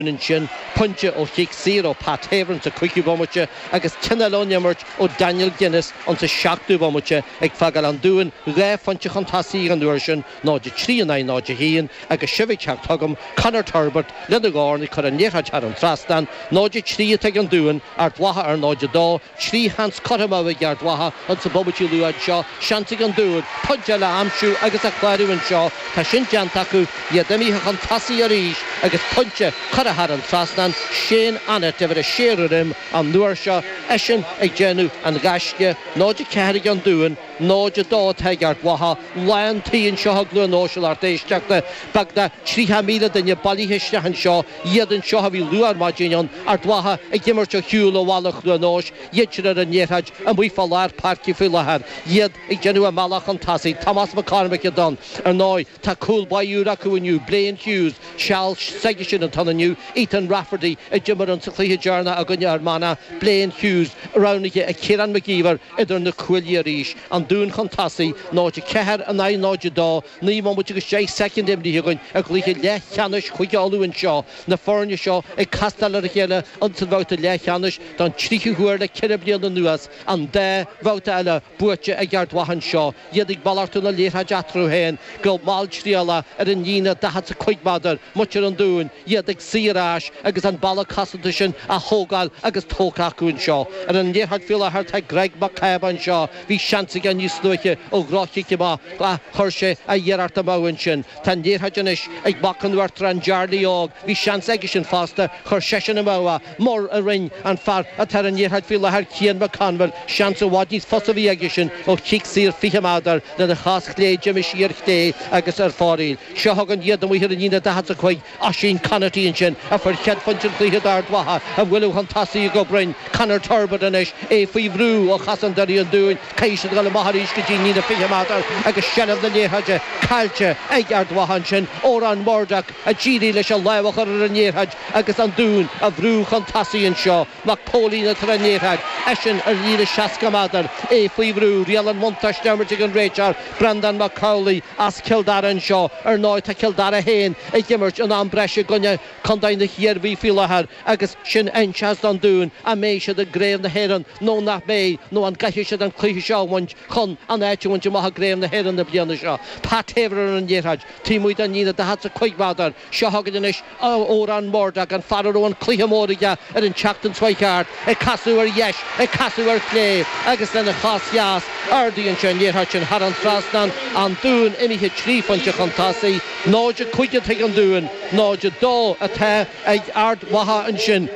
B'ionann sin, pointe ó chic saor ó Pat Havern sa 5ú bomaite agus ceann eile ón imirt ó Daniel Guinness ins an 7ú bomaite ag fágáil An Dúin dhá phointe chun tosaigh an uair sin, 0-3 in aghaidh 0-1, agus sibh ag teacht chugam, Conor Turbitt, lena dhorn ag cur an liathróid thar an trasnán, 0-3 atá ag an Dún, Ard Mhacha ar 0-2, Trí sheans curtha amú ag Ard Mhacha ins na bomaití luatha anseo, seans ag an Dún pointe eile a aimsiú agus a chlárú anseo, tá sin déanta acu, iad imithe chun tosaigh arís agus pointe curtha thar an trasnán, Shane Annett uimhir a sé ar a dhroim an uair seo, eisean ag déanamh an ghaisce, 0-4 ag an Dún. 0 2 atá ag Ard Mhacha lán tí anseo i gCluain Eois a lucht éisteachta beagnach tríocha míle duine bailithe isteach anseo iad anseo ó bhí luath ar maidin ann Ard Mhacha ag imirt ar shiúl ó bhaile Chluain Eois iadsan ar an liathróid amuigh fá lár páirce faoi láthair iad ag déanamh a mbealach chun tosaigh Tomás Mac Cormaic a d'fhan Ar ndóigh tá cúl baí úr acu inniu Blaine Hughes seal s'aigesean atá ann inniu Ethan Rafferty a d'imir insa chluiche deireanach i gcoinne Fhear Manach Blaine Hughes roghnaithe ag Ciarán McKeever idir na cuaillí arís, an Dún chun tosaigh, 0-4 in aghaidh 0-2, naoi mbomaite agus deich soicind imrithe againn i gcluiche leathcheannais Chúige Uladh anseo, na foirne seo ag castáil ar a chéile ins an bhabhta leathcheannais don tríú huair le ceithre bliana anuas, an dá bhabhta eile buaite ag Ard Mhacha anseo. Iad ag malartú na liathróide eatarthu féin go malltriallach ar an líne daichead is a cúig méadar, muintir an Dúin iad ag suí ar ais agus an balla cosanta sin á thógáil agus tógtha acu anseo. Ar an liathróid faoi láthair tá Greg Mac Cába anseo. Bhí seans aige níos luaithe ó dhroch-chic amach ach chuir sé a iarracht amú ansin. Tá an liathróid anois ag mac an Uachtaráin, Jarly Óg. Bhí seans aigesean fosta, chuir seisean amú é. Mar a rinne an fear atá ar an liathróid faoi láthair, Cian Mac Conmhaoil, seans i bhfad níos fusa a bhí aigesean ó chic saor 20 méadar lena chos chlé d'imigh sí ar chlé agus ar fóraoil. Seo chugainn iad amuigh ar an líne 45, Oisín Conaty ansin, a fuair céad phointe an chluiche d'Ard Mhacha á bualadh chun tosaigh go cruinn, Conor Turbitt anois, é faoi bhrú ó chosantóirí an Dúin, caithfidh siad a dhul amach arís go dtí líne 20 méadar agus seilbh na liathróide caillte ag Ard Mhacha ansin, Odhrán Murdock a d'éirigh leis an lámh a chur ar an liathróid. agus an Dúin ag brú chun tosaigh anseo, Mac Póilín atá ar an liathróid, eisean ar líne 60 méadar, é faoi bhrú, riail an bhuntáiste á himirt ag an réiteoir, Breandán Mac Amhlaigh as Cill Dara anseo, ar ndóigh tá Cill Dara féin ag imirt in am breise i gcoinne contae na hIarmhí faoi láthair agus sin a inseochas don Dún an mbeidh siad i gCraobh na hÉireann nó nach mbeidh nó an gcaithfidh siad an cluiche seo a bhaint chun an áit a bhaint amach i gCraobh na hÉireann na bliana seo. Pat Havern ar an liathróid taobh amuigh den líne, 45 méadar, Seo chugainn anois Odhrán Murdock, an fear a raibh an cluiche mór aige ar an tseachtain seo chuaigh thart, ag casadh ar dheis, ag casadh ar chlé, agus lena chos dheas, ardaíonn sé an iarracht sin thar an trasnán, an Dún imithe trí phointe chun tosaigh, 0-5 atá ag an Dún, 0-2 atá ag Ard Mhacha ansin,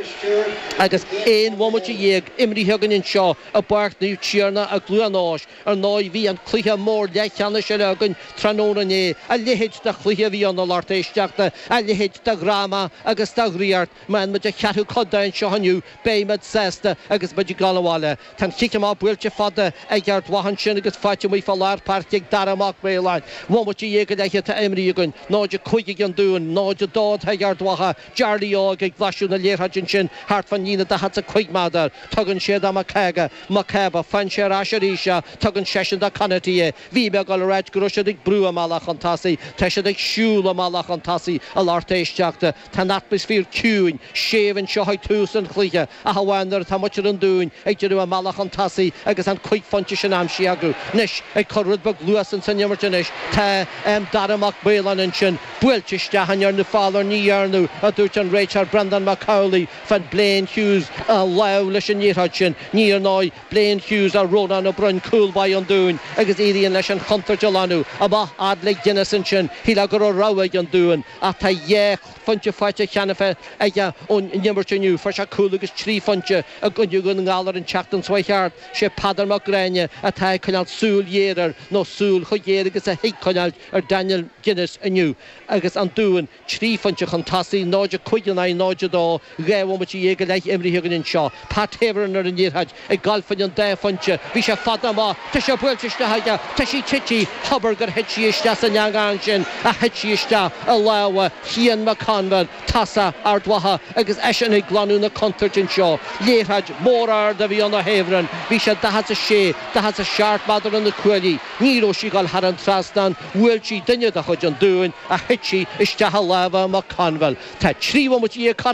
agus aon bhomaite dhéag imrithe againn anseo i bPáirc Naomh Tiarnach i gCluain Eois. Ar ndóigh, bhí an cluiche mór leathcheannais eile againn tráthnóna inné. A leithéid de chluiche a bhí ann, a lucht éisteachta! A leithéid de dhráma agus de dhraíocht! Má fhaigheann muid an ceathrú cuid de anseo inniu, beimid sásta agus muid ag dul abhaile. Tá an chic amach buailte fada ag Ard Mhacha ansin agus faighte amuigh fá lár páirce ag Dara Mac Maoláin. Aon bhomaite dhéag go leith atá imrithe againn, 0-5 ag an Dún, 0-2 atá ag Ard Mhacha, Jarly Óg ag blaiseadh na liathróide ansin thart fán líne 45 meadar. Tugann sé do Mac Cába, Mac Cába, faigheann sé ar ais arís í, tugann seisean do Conaty é. Bhí mé ag dul a ráit go raibh siad ag brú a mbealach chun tosaigh, tá siad ag siúl a mbealach chun tosaigh a lucht éisteachta. Tá an atmaisféar ciúin, séimh anseo ag tús an chluiche ach amháin nuair atá muintir an Dúin ag déanamh a mbealach chun tosaigh agus an cúig phointe sin aimsithe acu. Anois ag cur rud beag luas ins an imirt anois, tá, em, Dara Mac Maoláin ansin, buailte isteach an ndearnadh feall air? Ní dhearnadh, a dúirt an réiteoir Breandán Mac Amhlaigh, faigheann Blaine Hughes a lámh leis an liathróid sin. Ní ar ndóigh Blaine Hughes ach Rónán Ó Broin, cúl báire an Dúin, agus éiríonn leis an chontúirt a ghlanadh. Amach fhad le Guinness ansin. Shílfeá go raibh rogha ag an Dún, ach tá dhá phointe faighte cheana féin aige ón n-imirt inniu. Fuair sé cúl agus trí phointe i gcoinne Dhún na nGall ar an tseachtain seo a chuaigh thart. Sé Peadar Mac Gráine atá ag coinneáil súil ghéar air, nó súil chomh géar agus a thig coinneáil, ar Daniel Guinness inniu agus an Dún trí phointe chun tosaigh, 0-5 in aghaidh 0-2. Dhá bhomaite dhéag go leith imrithe againn anseo. Pat Havern ar an liathróid ag gabháil fá choinne an dá phointe. Bhí sé fada amach. Tá sé buailte isteach aige. Tá sí tite. Hobair gur thit sí isteach san eangach ansin ach thit sí isteach i lámha Chian Mac Conmhaoil, tosaí Ard Mhacha, agus eisean ag glanadh na contúirte anseo. Liathróid mór ard a bhí ann ó Havern. Bhí sé 46, 47 meadar ó na cuaillí. Ní raibh sí ag dul thar an trasnán, bhuail sí duine de chuid an Dúin ach thit sí isteach i lámha Mac Conmhaoil. Tá trí bhomaite dhéag curtha